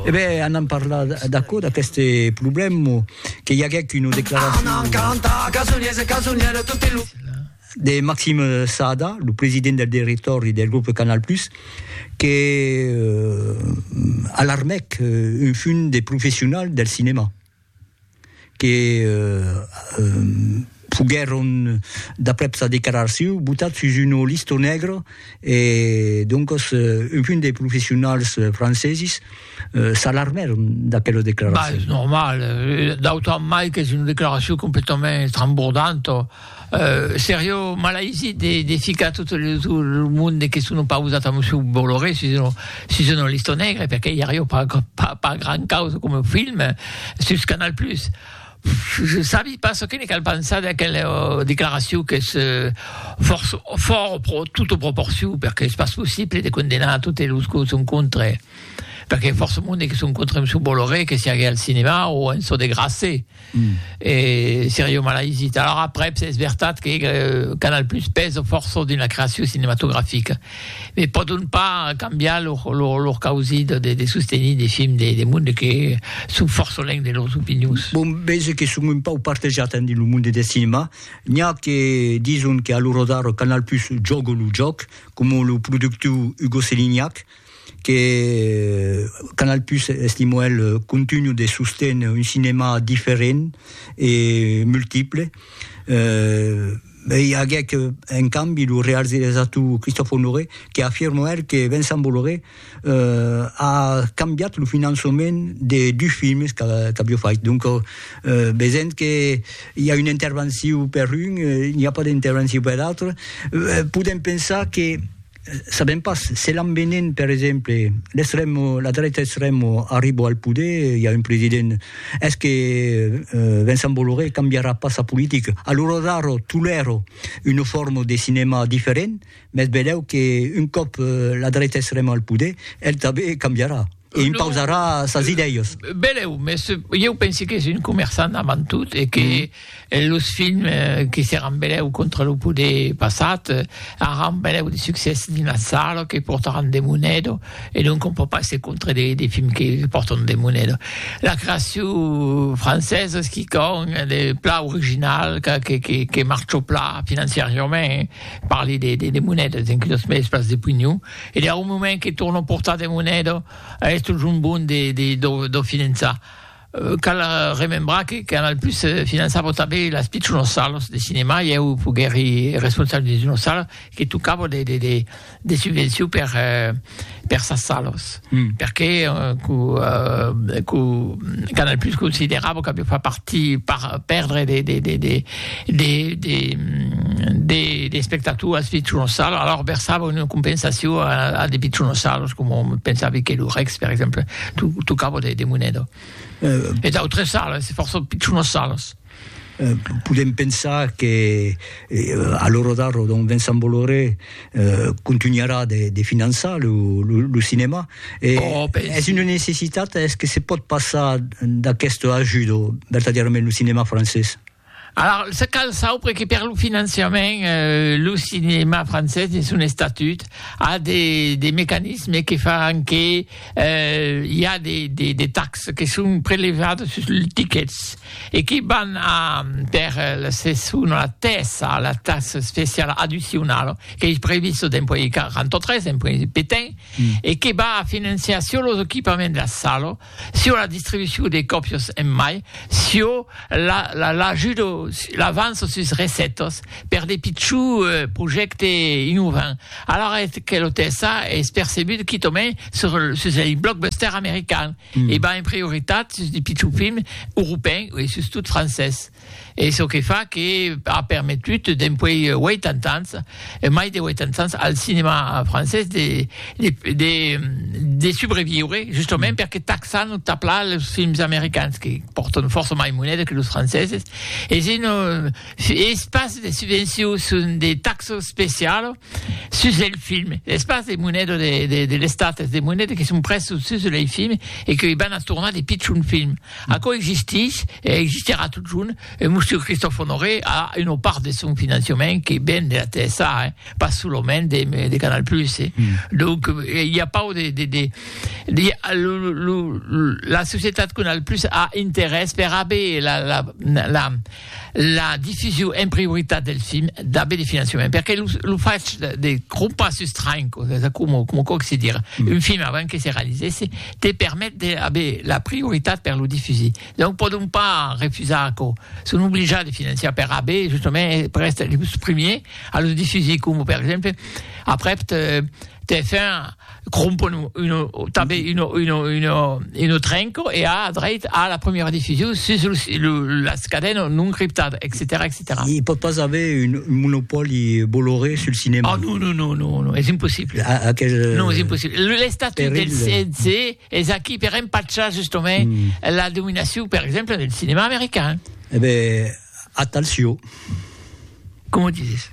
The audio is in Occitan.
E ben, anam parlar d'aquò, d'aqueste problèma, que i aguèc una declaracion de Maxime Saada, lo president del directòri del grup Canal+, que alarmèc un fum de professionals del cinèma. que foguèron, d'aprèp sa declaracion, botats sus una lista negra e doncas un punt de professionals francesis s'alarmèron d'aquela declaracion. Bah, es normal, d'autant mai qu'es una declaracion completament estrambordanta. Serio malaisit de ficar tot lo monde que son opausat a Monsieur Bolloré sus una lista negra, perque i ario pas gran causa coma film sus Canal Plus. Je sabi pas çò que ne cal pensar d'aquela declaracion qu'es fòrt tota proporcion, perque es pas possible de condenar totes los que son contre, perque fòrça monde que son contre Monsieur Bolloré que siague al cinema o en çò de grasser. Mm. E Sergio Malaizit. Alors après, es veritat que euh, Canal Plus pèsa fòrça dins la creacion cinematografica, me pòdon pas cambiar lor, lor, lor causit de, de sostenir de films de, de monde que son fòrça lèng de lors opinions. Bon, veig que son un pau partejat en dins lo monde de cinema. N'hi ha que dison que a lo rodar Canal Plus jòga lo jòc, com lo productiu Hugo Selignac, que Canal Plus estimo el contunho de sostener un cinema diferent e multiple eh, e i aguec en cambi lo realisator Christophe Honoré que afirma el que Vincent Bolloré eh a cambiat lo finançament de dus films qu'avió fait donc eh vesent que i a una intervencion per un, n'i a pas d'intervencion per l'autre, podem pensar que Sabèm pas, se l'an venent per exemple l'extrèm, la dreta extrèm arribo al poder, i a un president, es que Vincent Bolloré cambiarà pas sa politica? A l'ora d'ara tolèro una forma de cinèma diferent, mès velèu que un còp la dreta extrèma al poder, el tanben cambiarà. E impausarà sas idèias. Belèu, mès ieu pensi qu'es un comerçant avant tot e que los films que seràn belèu contra lo poder passat aràn belèu de succès dins las salas, que portaràn de moneda e donc on pòt pas èsser contra de films que pòrtan de moneda. La creacion francesa es quicòm de plan original que marcha plan financiariament, parli de monedas, enquí los mèdies pas de pugnon. E deu moment que torno portar de moneda a esto jombon de de do do finançar. Cal remembrar que Canal Plus finançava tanben las pichonas salas de cinema e eu foguèri responsable de d'una sala que tocava de de de de subvencion per per sas salas. Perqué que Canal Plus considerava qu'aviá pas parti per perdre de espectators pichonossalos, alors versava una compensacion a de pichonossalos, coma me pensavi que lo Rex, per exemple, tocava de moneda. E d'autres salas, fòrça pichonossalos. Podem pensar que a l'ora d'ara don Vincent Bolloré contunharà de finançar lo cinèma. Es una necessitat? Es que se pòt passar d'aquesta ajuda vertadièrament lo cinèma francés? Alara, se cal saupre que per lo finançament lo cinèma francés dins son estatut a de mecanismes que fan que i a de taxes que son prelevades sus los tickets. e qui van a per la seson la tèsa, la taxa especiala addicionala, qu'ei prevista dempuèi 43, dempuèi petain, e que va a financiar sur los equipaments de la sala, sur la distribucion de còpias en mai, sur l'ajuda, l'avança sus recètas per de pichons projèctes innovants. Alara eth que lo tèsa es percebut quitament sus lei blockbusters americans. e va en prioritat sus de pichons films europèns e sustot francés, e çò que fa que a permetut dempuèi 80 ans, mai de 80 ans, al cinèma francés de de de subreviure, justament perque taxan o taplan los films americans que pòrtan fòrça mai moneda que los franceses, e se non es pas de subvencions son de taxes specialas, Sus lei films, es pas de monedo de l'estat, es de monedo que son presos sus lei films e que i van a tornar de pichons films. Aquò existís e existirà totjorn. E Monsieur Christophe Honoré a una part de son financiament que ven de la TSA, eh, pas solament de Canal Plus, eh. Donc, i a pas de, de, de, de, lo, lo, la societat Canal Plus a interès per aver la, la, la, la diffusion en prioritat del film d'aver de finançament perque lo, lo fach de, de crompar sus train como, como quoque se dire mm. un film avant que se realisesse te permet d'aver la prioritat per lo diffuser donc podon pas refusar que son obligats de finançar per aver justement per estar los premiers a lo diffuser como per exemple après TF1 crompon uno tanben uno uno uno uno trenco e a dreit a la premiera diffusion sus lo, lo las cadena non criptada etcetèra etcetèra il pòt pas aver un monopòli boloré sul cinèma ah non non non non non es impossible a, a aquel non es impossible l'estatut del CNC es aquí per empachar justament mm. la dominacion per exemple del cinèma americain eh ben atalcio com dizes